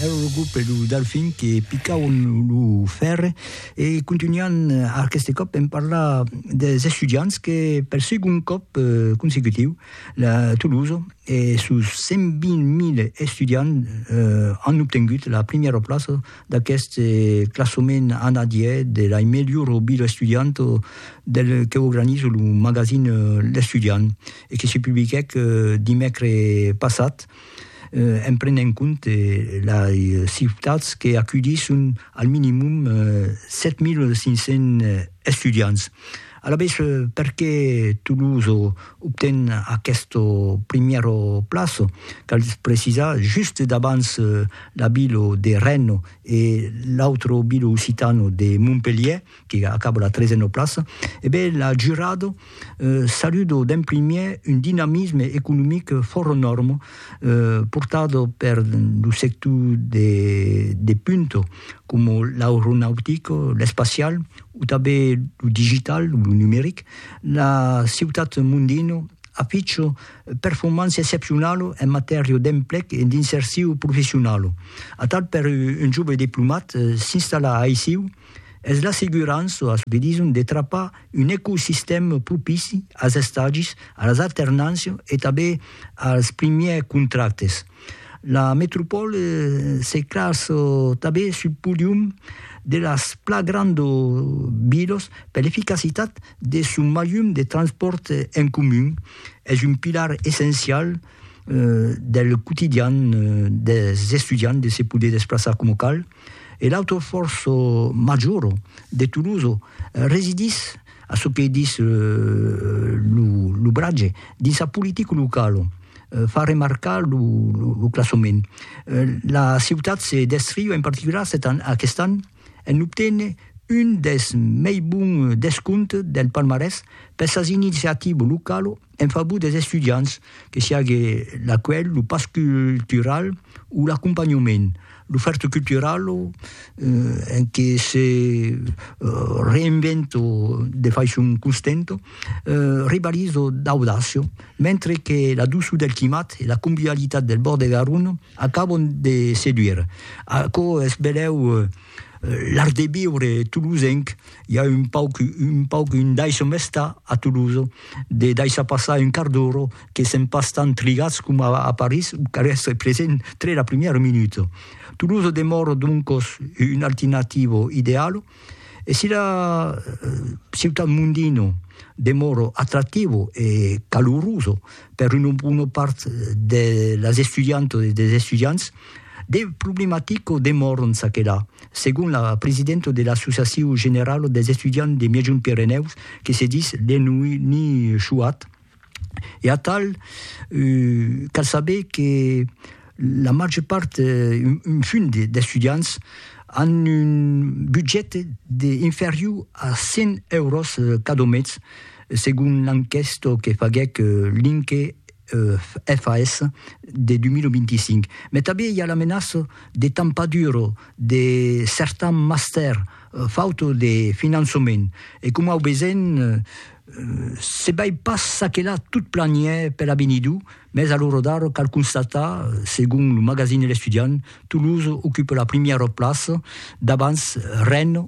Ère lo grup e lo Delfin que picauen lo fèrre e contunhan aqueste còp en parlar des estudiants que per segond còp consecutiu la Tolosa e sos 120.000 estudiants an obtengut la primièra plaça d'aqueste classament anadièr de la melhora vila estudianta del que organiza lo magazin L'Estudiant e que se publiquèc dimècres passat. en prenent en compte lei ciutats que aculhisson al minimum 7.500 estudiants. Alavetz, perqué Toulouse obten aqueste primièr plaç? Cal precisar, just davants la vila de Rennes e l'autre vila occitana de Montpelhièr, que acaba la trezena plaça, e ben la jurada saluda d'en primièr un dinamisme economic fòra nòrma portat per lo sector de punta coma l'aeronautic, l'espacial o tanben lo digital, lo numeric. La ciutat mondina aficha performància excepcionala en matèria d'emplec e d'insercion professionala. Atal per un jove diplomat s'installar aicí es l'assegurança a çò que dison de trapar un ecosistèma propici als estagis, a las alternàncias e tanben als primièrs contractes. La metropòla se classa tanben sul podium de las pla grandas vilas per l'eficacitat de son malhum de transpòrt en comun. Es un pilar essencial del quotidian dels estudiants de se poder desplaçar coma cal. E l'autre fòrç major de Toulouse residís, a çò que dis lo bratge, dins sa politica locala, far remarcar lo classament. La ciutat se descriu en particular aquest an en obténer un dels mei bons descomptes del palmarès per sas iniciativas localas, En favor des estudiants, que siague l'acuelh, lo pas cultural o l'acompanhament, l'ofèrta culturala en que se reinventa de faiçon constanta, rivaliza d'audàcia, mentre que la doçor del climat e la convivialitat del bòrd de Garona acaban de seduire. Aquò es benlèu l'art de viure tolosenc I a un pauc, un pauc, un daisho mesta a Toulouse, de daishar passar un quart d'ora, que sèm pas tant trigatz coma a París, o cal èstre present tre la primièra minuta. Toulouse demòra doncos una alternativa ideala, e si la ciutat mondina demòra atractiva e calorosa per una bona part de las estudiantas e dels estudiants, De problematico demòron ça que là, segon la presidenta de l'Associacion Generala dels Estudiants de Miègjont Pirenèus, que se dis Léonie Chouat. E atal, cal saber que la màger part, un fum d'estudiants, an un budget de inferior a 100 euros cada mes, segon l'enquèsta que faguèc Linke FAS de 2025. Mai tanben i a la menaça de tampadur de certans mastèrs fauta de finançament. E coma au vesen, se bai pas ça que là tot planiè per avenidur, mes a l'ora d'ara cal constatar, segon lo magazine L'Estudiant, Toulouse ocupa la primièra plaça davans Rennes,